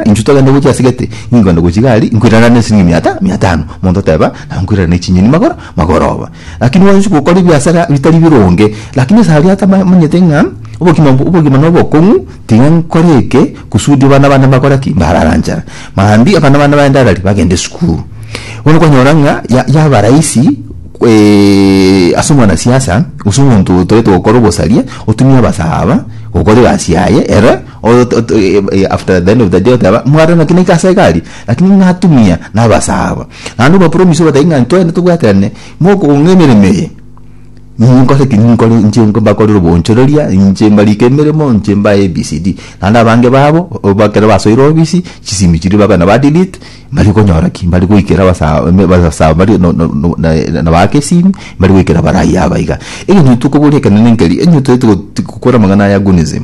Intwe togende gochia ase gete, ningogenda gochia igari, nkoirana ne esiringi mia ta, mia tano. Omonto oteba, Nabo nkoirana ne chinyeni magoro, magoro obo. Lakini gwancha gokora ebiasara bitari bironge. Lakini ase aria atamanyete ng'a obogima, obogima nobokong'u, tiga nkore eke, kusudi abana bane mbakore ki? Mbarara nchara. Maambia abana bane baende arari, bagende esukuru. Bono kwanyora ng'a ya, yaba rahisi eh, ase omwanasiasa, gose omonto otaete gokora obosaria, otumie abasaaba gokora egasi yaye, ere. After the end of the day oteba mwarore naki naika ase egari lakini natumia nabasa aba naende obapromise obatebie ng'a ntwende tobwaterane mokong'a emeremo eye inwe nkore ki ninkore inche mbakorere obonchoreria inche mbarike emeremo inche mbae ABCD naende abange babo ekero basoire ofisi chisimi chiria babe na ba delete mbari konyora ki mbari goikera basa basa aba bari no no na baake esimi mbari goikera baraia aba iga egencho tokoboria ekenene nkeri onye toigete gokora amang'ana aya agonism.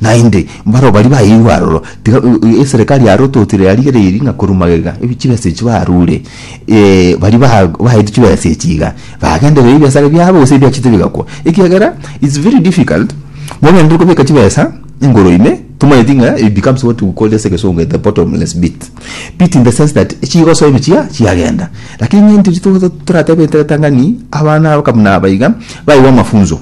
Naende baroo baria baeirwe aroro, tiga eserekari ya Ruto tira yarigereirie ng'a korwa magega ebi chibesa echi barure, baria ba baeirwe chibesa echi iga, bagendereire ebiasara biabo gose ebiachete bigakwa, ekiagera it's very difficult mogenderere kobeka chibesa igoro ime, tomanyeti ng'a it becomes what we call ase egesongo the bottomless pit, pit in the sense that chigosoa ime chiaa chiagenda, lakini ng'a intwe toratebe ekeretang'ani abana abakabuna aba iga, baeirwe amafunzo.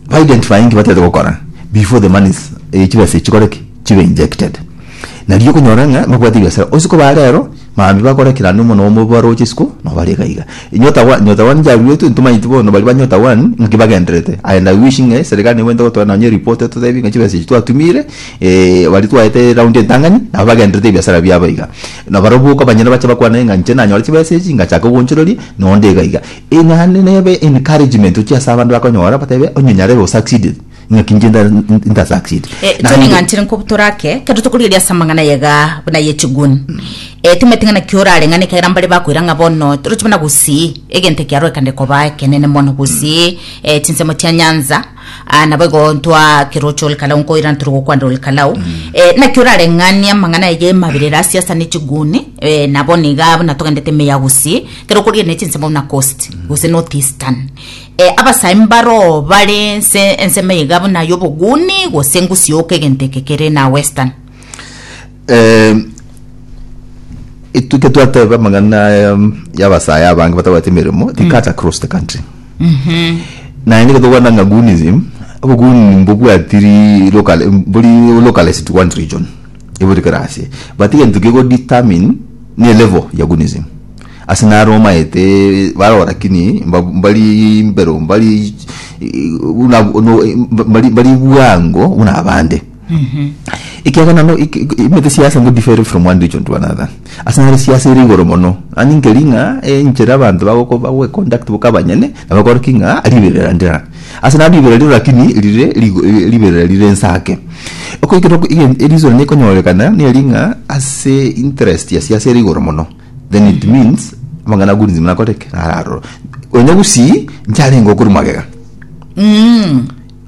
ba identifying batete gokora before the money is eh, chibesa chikore ki chibe injected nari okonyora ng'a babwate biasara osiko ba rero mambi bakora kira ande omono omo baroche isiko no bari gaiga nyota wa nyota wani jaruetu ntumanyiti bono bari banyota wani nki bagenderete and i wish ng'e serikali nebwente gotoa nonye report totebi ng'a chibesa echi twatumire eh bari twaete round entang'ani nabo bagenderete ebiasara biabo iga na barobwo okabanyora bache bakwane ng'a inche nanyore chibesa echi ngachaka ogonchoreria nonde iga iga Eye naende nebe encouragement ochia ase abanto bakonyora batebe onye nyarebe osucceed ng'aki inche nta succeed. Eh, Tony Naende- ng'anchire nkobutora ake, ekero tokorigereria ase amang'ana ayega buna aye chigun. Eh, timanyete ng'a naki orareng'ane ekiagera mbare bakoira ng'a bono toroche buna gusii, egento ekiarorekane koba ekenene mono gusii, eh, chinsemo chia nyanza, Aa, nabo igo ntwa keroche ore kalau nkoira ntore gokwanera ore kalau eh, naki orareng'ania amang'ana eye emabirere asia asa ne chiguni eh, nabo niga buna togendete emeya gusii kero okoria ne chinsemo buna coast gose north eastern eh, abasae mbaroo bare nse ensemo iga buna yoboguni gose ngusioka egento eke kere na western Eh, etuke twateba amang'ana aya y'abasae abange batabwate emeremo they cut across the country naye nige tokwana ng'a gunism oboguni mbobwatiri local bori localized to one region ebori kera ase but egento kego determine ne level ya gunism ase naro omaete baroo lakini mba- mbari mbero mbari eh, buna- no- eh, mbari mbari bwango buna abande Ekiagera nano imete siasa ngo differ from one region to another. Ase nare siasa ere igoro mono. Ani nkeri ng'a enchera abanto bagoko bagwe conduct boka abanyene na bakore ki ng'a riberera ndira. Ase naro riberera rire lakini rire rigo riberera rire ense ake. Okoikera oko egen reason nekonyorekana neri ng'a ase interest ya siasa ere igoro mono then it means amang'ana agood nzima nakore ki? Naro aroro. Onye gusii nchiarenge okorwa magega.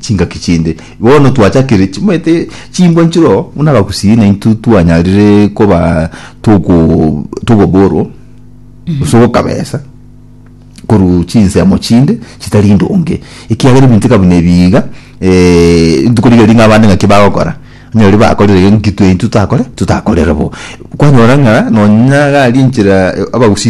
chingaki chinde. Bono twachakire chimaete chimbwa nchiro buna abagusii naintwe twanyarire koba togo togoborwo gose ogokabesa korwa chinsemo chinde chitari ndonge ekiagera ebinto eka buna ebi iga ntikorigereria ng'a abande naki bagokora onye riria bakorire gento nki twaintwe totakore totakorere bo. Kwanyora ng'a nonya iga aria enchera abagusii.